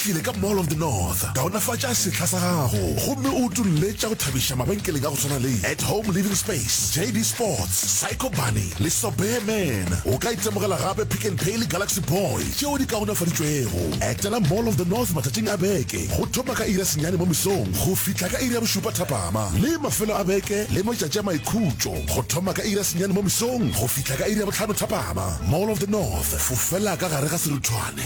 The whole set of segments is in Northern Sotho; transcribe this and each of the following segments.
Tlile ka Mall of the North, kaonafatša sehla sa gago gomme o utolle tša go thabiša mabenkeleng a go swana le At Home Living Space, JD Sports, Psycho Bunny le Sobeya Man. O ka itemogela gape Pick n Pay le Galaxy Boy tšeo di kaonafaditšwego. Etela Mall of the North matšatšing a beke go thoma ka iri ya senyane mo mesong go fihla ka iri ya bošupa thapama le mafelo a beke le matšatši a maikhutšo go thoma ka iri ya senyane mo mesong go fihla ka iri ya bohlano thapama. Mall of the North, fofela ka gare ga seruthwane.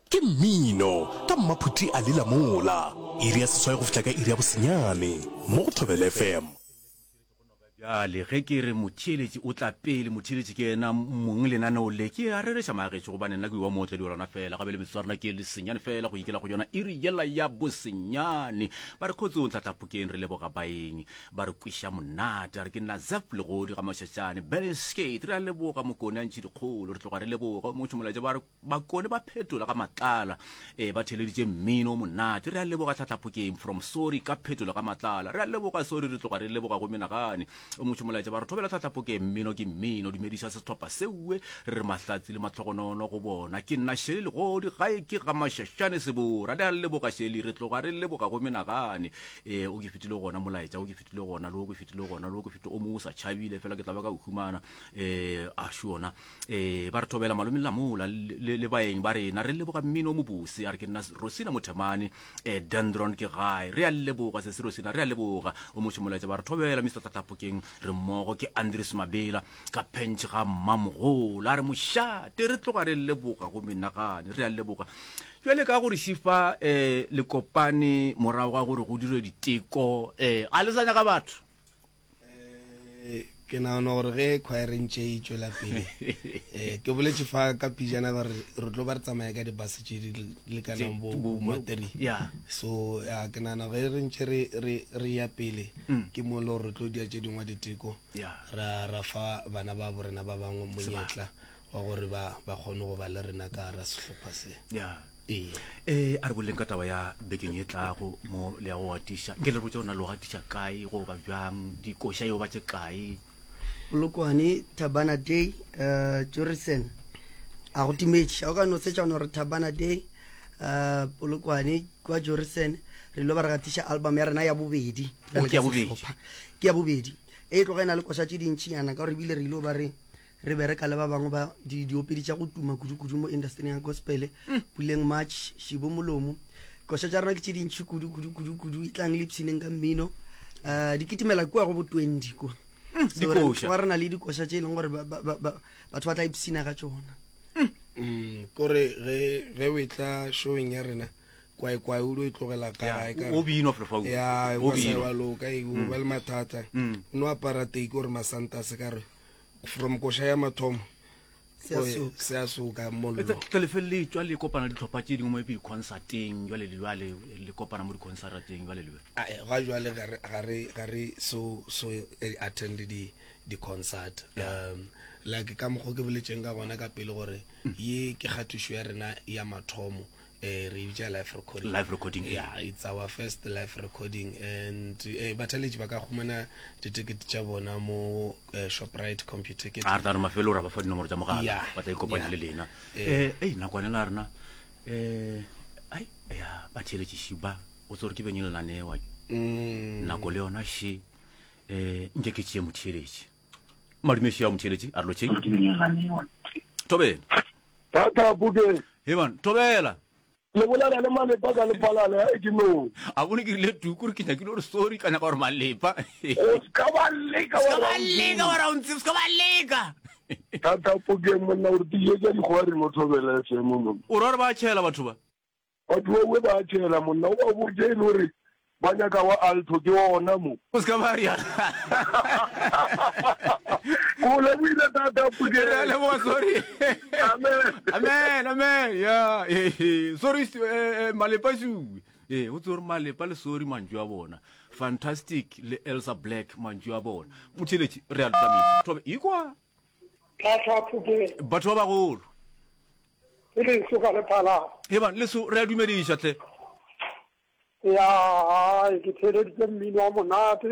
Ke mmino ka mmaphuti a lila mola. Iri ya seswai go fihla ka iri ya bosenyane mo go Thobela FM. Bjale ge ke re motheeletši o tla pele, motheeletši ke yena mong lenaneo le. Ke a rereša maagešo gobane nna ke yo wa mootledi wa lona fela, gabe le metsotso ya rena ke lesenyane fela go ikela go yona iri yela ya bosenyane. Ba re Kgotsong Tlatlapokeng, re leboga baeng ba re kweša monate. A re ke nna Zeph Legodi Gamašatšane, Berlin Skate, re a leboga Mokone a ntšhidikgolo, re tloga re leboga o mongwe tšhomolaetša ba re bakone ba phetola ka matlala e ba theleditše mmino monate re a leboga tlhatlhaphokeng from sorry ka phetola ka matlala re a leboga sorry re tloga re leboga go menagane o motho molaetša ba re thobela tlhatlhaphokeng mmino ke mmino dumediša setlhopha seue re re mahlatsi le matlhogonono go bona ke nna šele legodi gae ke ga mašašane sebora re a leboga šele re tloga re leboga go menagane e o ke fetile gona molaetša o ke fetile gona le o ke fetile gona le o ke fetile o mo o sa tšhabile fela ke tla ba ka o humana um a šona ee ba re thobela malomeng la mola le, le baeng ba rena re leboga mmino o mobose a re ke nna rosina mothemane um dendron ke gae re a leboga se se rosina re a leboga o moše molaetsa ba re thobela mr tataphokeng re mmogo ke andres mabela ka pentšhe ga mmamogola a re mošate re tloga re leboga go menagane re a leboga jale ka gore šifa um eh, le kopane morago ga gore go dire diteko um eh, ga le sa nyaka batho eh, ke nagana gore ge khwaereng tše e tšwela pele eh, ke boletse fa ka pijana gore re tlo ba re tsamaya ka dibase tše di lekanang bomateri so ya ke nagana ge re ntse re ya pele mm. ke mo le gore re tlo dia tše dingwe diteko ra fa bana ba borena ba bangwe monyetla wa gore ba ba kgone go ba le rena ka gara sehlopha se ya ee ee a re boleng ka taba ya bekeng e tlago mo le ya go gatiša nke le rotse ona lo gatiša kae go ba bjang dikoša eo ba tše kae polokwane tabana day um jorisen a go timetše a o ka no setšana gore tabana day um polokwane kwa jorisen re lo ba re gatiša album ya rena ya bobedi Oh, ke ya bobedi. Sehlopha. ke ya bobedi e tloga e na le koša tše dintšhinyana ka gore ebile re ile ba re Re bereka le ba bangwe ba di, diopedi tša go tuma kudu-kudu mo indastering ya gospele, Puleng March, Shibo Molomo. Koša tša rena ke tše dintši kudu, kudu, kudu, kudu. Etlang le ipshineng ka mmino. Uh, di kitimela kua go bo 20 kua. So, re, Dikoša. re na le dikoša tše e leng gore ba- ba- ba- ba- batho ba tla ipshina ka tšona. Mm, kore ge ge o etla showing ya rena kwaekwae o lo e tlogela ka gae ka o binwa flefaul ya o wa sa binwa wa loka e o ba le mathata Mm. o no apara teki gore masanta a se ka re from koša ya mathomo seasoka mollotlelefele tswa le kopana ditlhopha tse dingwe mo epe diconcerteng jale le jale le kopana mo diconcerteng jale le ga jale ga re so so e attend di-concert um like ka mokgwa ke boletseng ka gona ka pele gore ye ke kgatišo ya rena ya mathomo Eh, re bitša live recording live recording yeah, yeah it's our first live recording and eh, bathaletši ba ka khumana ditekete tša bona mo eh, shoprite computer ke a re tla mafelo ra ba fa dinomoro tsa mogala yeah, ba tla ikopanya yeah. le lena eh. eh ei nakwane la rena eh ai ya batheletši šiba o tsore ke beng e lenanewa mm. nako le yona she eh nke ke tšee motheletši madumeši ya motheletši a re lotšheng tobeng Thata Bukeng. Hei bana, thobela! Le bolela le Malepa ka lepalana, ya re ke nong. A bone ke rile Tuku gore ke nyakile gore sorry, ka nyaka gore Malepa. O se ka ba leka wa Rauntsebe. O se ka ba leka wa Rauntsebe, o se ka ba leka. Thata Bukeng, monna o re tiišetša dikgwa reng o thobela FM monna. O ra gore ba a tšhela batho ba. Batho ba uwe ba a tšhela monna o ba botše e le gore ba nyaka wa alto ke ona mo. O se ka ba rialo. Ke go lebohile tata Phutheng. Re a leboga sorry. Amen. Amen amen ya sorry eh, eh, malepa suwe. Eh o tsore malepa le sorry mantšu a bona. Fantastic le Elsa Black mantšu a bona. Phutheletši re a le tsamisa. Thobe ikwa. Tla tla Phutheng. Batho ba bagolo. Ke leso ka le phalama. Ebang leso re a dumediša hle. Ya ke theeleditse mmino wa monate.